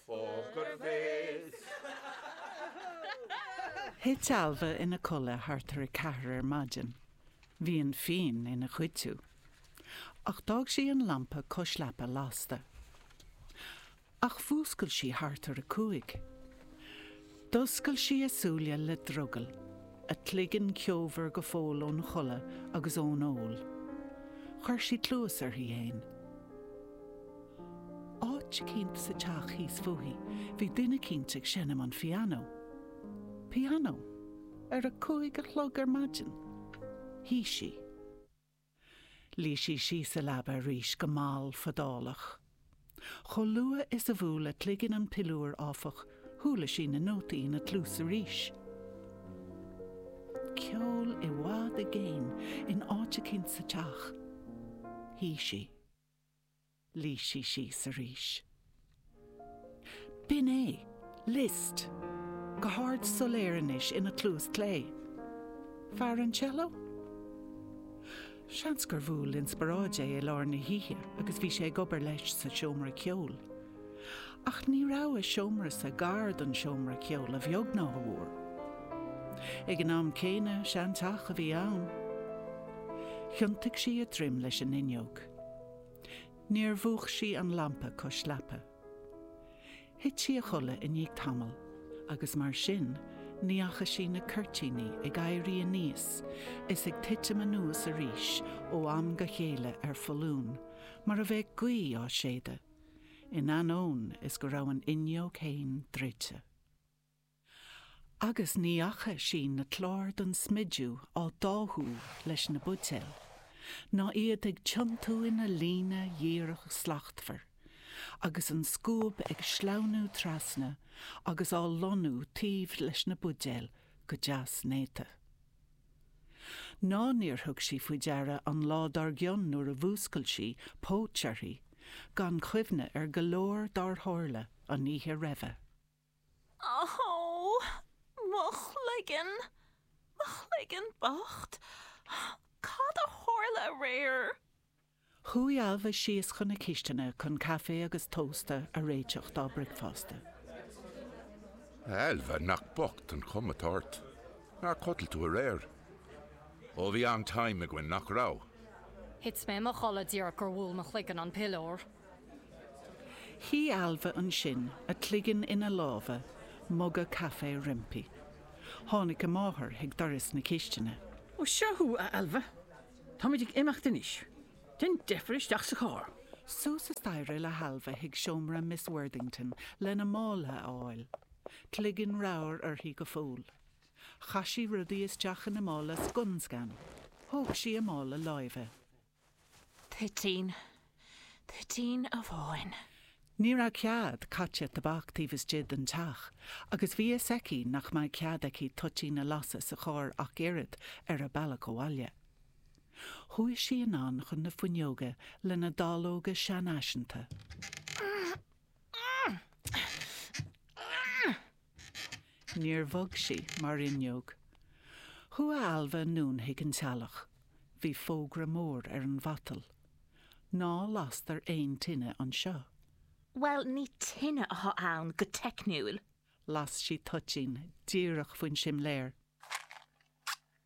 Poker Face! Thit Ailbhe ina codladh thart ar a ceathair ar maidin. Bhí an fíon ina chuidiú. Ach d'fhág sí an lampa cois leapa lasta. Ach mhúscail sí thart ar a cúig. D'oscail sí a súile le drogall, a cloigeann ceomhar go fóill ón chodladh agus ón ól. Chuir sí cluas uirthi fhéin. Áit eicínt sa teach thíos fúithi bhí duine eicínt ag seinm an pianó. Pianó? Ar a cúig a chlog ar maidin? Shuigh sí. Luigh sí síos sa leaba arís go mall fadálach. Chomh luath is a bhuail a cloigeann an piliúr, áfach, chuala sí na nótaí ina cluas arís. Ceol i bhfad i gcéin in áit eicínt sa teach. Shuigh sí. Luigh sí síos arís. B'in é. Liszt. Go hard soiléir anois ina cluas clé. Fear an cello? Seans gur bhuail inspioráid é i lár na hoíche agus bhí sé ag obair leis sa seomra ceoil. Ach ní raibh a seomra sise gar don seomra ceoil a bheag ná a mhór. Ag an am céanna, seanteach a bhí ann. Thiontaigh sí a droim leis an fhuinneog. Níor mhúch sí an lampa cois leapa. Thit sí a chodladh i ndiaidh tamaill agus mar sin ní fhaca sí na cuirtíní ag éirí aníos is ag titim anuas arís ó am go chéile ar foluain mar a bheadh gaoth á séideadh, in ainneoin is go raibh an fhuinneog féin druidte. Agus ní fhaca sí na cláir don smidiú á dtáthú leis na buidéil, ná iad ag tiontú ina líne dhíreach shlachtmhar, agus an scuab ag sleamhnú trasna agus á lonnú taobh leis na buidéil go deas néata. Ná níor thug sí faoi deara an lá dár gcionn nuair a mhúscail sí, póit uirthi, gan cuimhne ar go leor dár tharla an oíche roimhe. Ohh! Mo chloigeann! Mo chloigeann bocht! Cad a tharla aréir? Chuaigh Ailbhe síos chun na cistine chun caife agus tósta a réiteach dá bricfeasta. Ailbhe, nach bocht an chuma atá ort! Nár chodail tú aréir? Ó, bhí an-time againn, nach raibh? Thit mé i mo chodladh díreach is gur bhuail mo chloigeann an piliúr. Shuigh Ailbhe ansin, a cloigeann ina lámha, muga caife roimpi. Tháinig a máthair chuig doras na cistine. 'Ó, seo thú, a Ailbhe. Táimid ag imeacht anois. Déan deifir isteach sa charr. Suas an staighre le hAilbhe chuig seomra Miss Worthington lena mála a fháil. Cloigeann ramhar uirthi go fóill. Chaith sí rudaí isteach ina mála scun scan. Thóg sí a mála láimhe. Toitín. Toitín amháin. Ní raibh cead caite tobac taobh istigh den teach agus bhí fhios aici nach mbeadh cead aici toitín a lasadh sa charr ach oiread ar a bealach abhaile. Chuaigh sí anonn chun na fuinneoga lena dáileoga seanfhaiseanta. Níor bhog sí mar fhuinneog. Chuaigh Ailbhe anonn chuig an teallach. Bhí fógra mór ar an mhatal. Ná lastar aon tine anseo. Bhuel, ní tine atá ann go teicniúil. Las sí toitín díreach faoin simléar.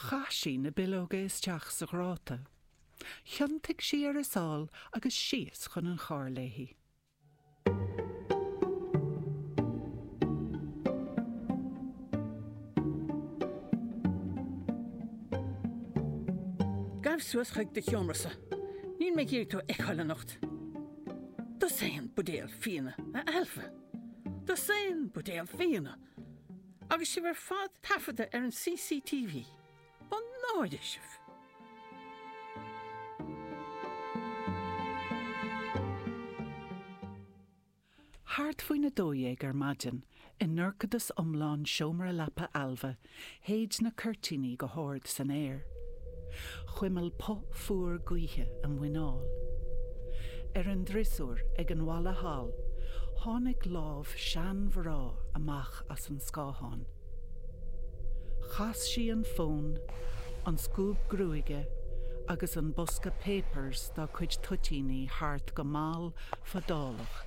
Chaith sí na bileoga isteach sa ghráta. Thiontaigh sí ar a sáil agus síos chun an chairr léi. Gabh suas chuig do sheomra-sa. Níl mé ag iarraidh tú a fheiceáil anocht. Dosaen buidéal fíona, a Ailbhe. Dosaen buidéal fíona! Agus sibh ar fad taifeadta ar an CCTV. Mo náire sibh! Thart faoin 12 ar maidin, i ndorchadas iomlán seomra leapa Ailbhe, shéid na cuirtíní go hard san aer. chuimil puth fuar gaoithe a muineál. Ar an driosúr ag an bhalla thall tháinig lámh seanmhná amach as an scáthán. Chas sí an fón, an scuab gruaige agus an bosca papers dá cuid toitíní thart go mall fadálach.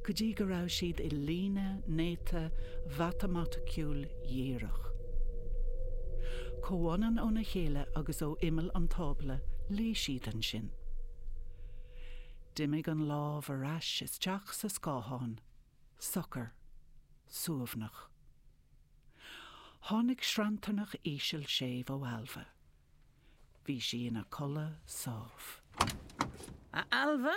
go dtí go raibh siad i líne néata mhatamaiticiúil dhíreach. Comhionann óna chéile agus ó imeall an tábla luigh siad ansin. D'imigh an lámh ar ais isteach sa scáthán, socair, suaimhneach. Tháinig sranntarnach íseal séimh ó Ailbhe. Bhí sí ina codladh sámh. A Ailbhe,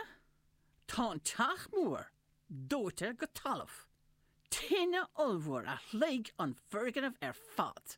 Tá an teach mór dóite go talamh. Tine ollmhór a shloig an foirgneamh ar fad.